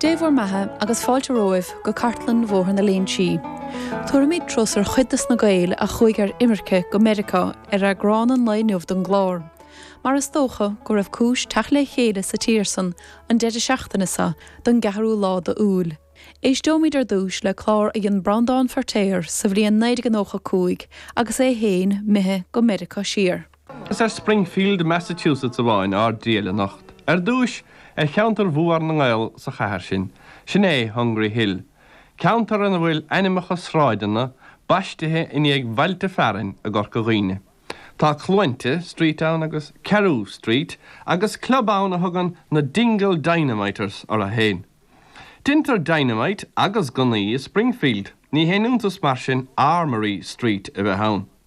Dé bhur mbeatha agus fáilte romhaibh go Cartlann Bhóthar na Léinsí. Tabharfaimid turas ar chuid dos na Gaeil a chuaigh ar imirce go Meiriceá ar eagrán an lae inniu don gclár. Mar is dócha go raibh cúis teacht le chéile sa tír san an deireadh seachtaine so don gceathrú lá do Iúil. Éisteoimid ar dtúis le clár a dhein Breandán Feirtéar sa bhliain 1995 agus é fhéin imithe go Meiriceá siar. Is ar Springfield, Massachusetts amháin ár dtriall anocht. Ar dtúis, ar cheantar mhór na nGael sa chathair sin. Sin é, Hungry Hill. Ceantar ina bhfuil ainmneacha sráideanna baistithe i ndiaidh bhailte fearainn i gCorca Dhuibhne. Tá Cluainte Street ann agus Carew Street agus club ann a thugann na Dingle Dynamiters orthu féin. Deintear dynamite agus gunnaí i Springfield, ní haon iontas mar sin Armory Street a bheith ann.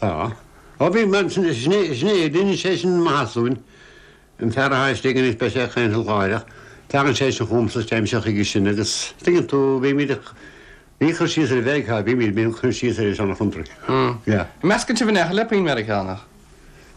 Tá. Ó bhí mé ansin is ghné, ghné, rinne sé sin an Mathasúin, an fear atá istigh anois, beidh sé ag caint leat láithreach, tagann sé sin chugamsa, téimse chuige sin agus tuigeann tú, bímid ag, ní cur síos ar Mheiriceá a bhímid, bímid ag cur síos ar an seana-chontae. Yeah. Meascann sibh in aon chor le puinn Meiriceánach.